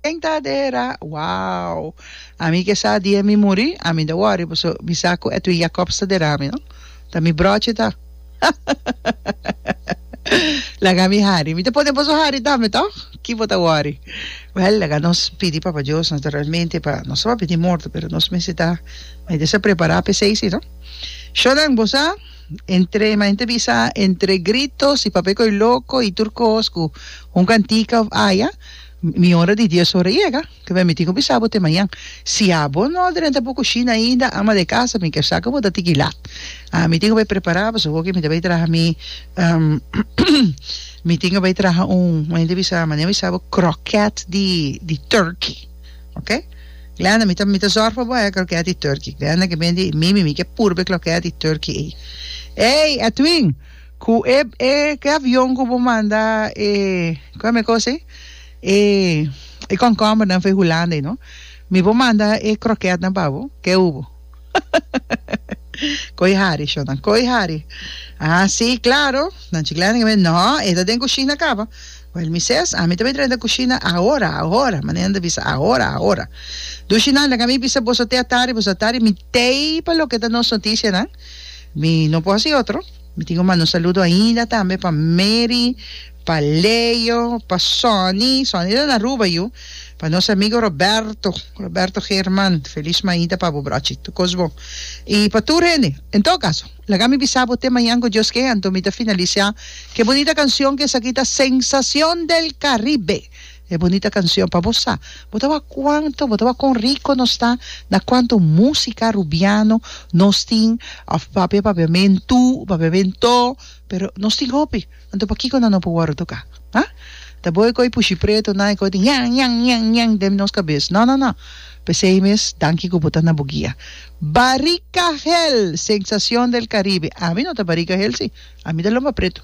Ken ta adera? Wow! Ami ke sa dia mi muri, ami ta wòri paso mi sa ku Edwin Jacobs ta dera mi, no? Ta mi bròchi ta. Laga mi hari. Mi ta pone boso hari tambe, tòg? Ki bo ta wòri? Wèl, laga nos pidi Papa Dios naturalmente pa nos tabata di morto, pero nos mester ta mester ta prepará p'esei sí, no? Shornan, bo sa? Entre, ma hende bisa, entre gritos y papia coy loco y tur cos cu un cantica of aya, mi hora di dies ora yega. Cu mi a miti cu bisa bo te mañan. Si abo no a drenta bo cushina ainda, ama de casa, mi ker sa cu bo ta tiki lat. A mi tin cu bay prepara pasobra mi ta bay traha mi, mi tin cu bay traha un, ma hende bisa, mane a bisa bo, croquet di turkey. Ok. Glenda, mi ta mi ta zorg pa bo e kroket di turkey. Glenda ke bini di, Mimi, mi ke purba e kroket di turkey ei. Ey, Edwin, ku e e ke avion ku bo manda e, kon mi e kos ei? E e komkombernan for e hulanda ei no. Mi por manda e kroketnan pa bo, ke hu bo? Koy hari, shonnan, koy hari. Ah, sí, claro. Nan chiclana di Gambia, no, e ta den cushina caba. Well, mi ses, ami ta bay drenta cushina ahora, ahora, manera nan ta bisa, ahora, ahora. Dushi nan, laga mi bisa boso te atari, boso atari, mi tey pa loke ta nos noticianan. Mi no por haci otro. Mi tin un mano saludo ainda tambe pa Mary Pa Leo, pa Sonny, Sonny ta na Aruba yu, pa nos amigo Roberto, Roberto Geerman, feliz mañita pa bo brochi, tur cos bon, y pa tur hende. En todo caso, laga mi bisa bo te mañan cu Dios ken, anto mi ta finalisa cu e bunita cancion cu esaki ta Sensacion del Caribe, e bunita cancion pa bo sa, bo ta wak cuanto, bo ta wak con rico nos ta, na cuanto musica Rubiano nos tin, of papia, papia men tu, papia men to, pero nos tin hopi. Anto pakico nan no por worde toca? Ha? Ta bo e coi pushi preto nan e coi tin yan yan yan yan den nos cabez? No no no! Pesey mes, danki cu bo ta na bo guia. Barica hel! Sensacion del Caribe! Ami no ta barica hel si, ami ta lomba preto.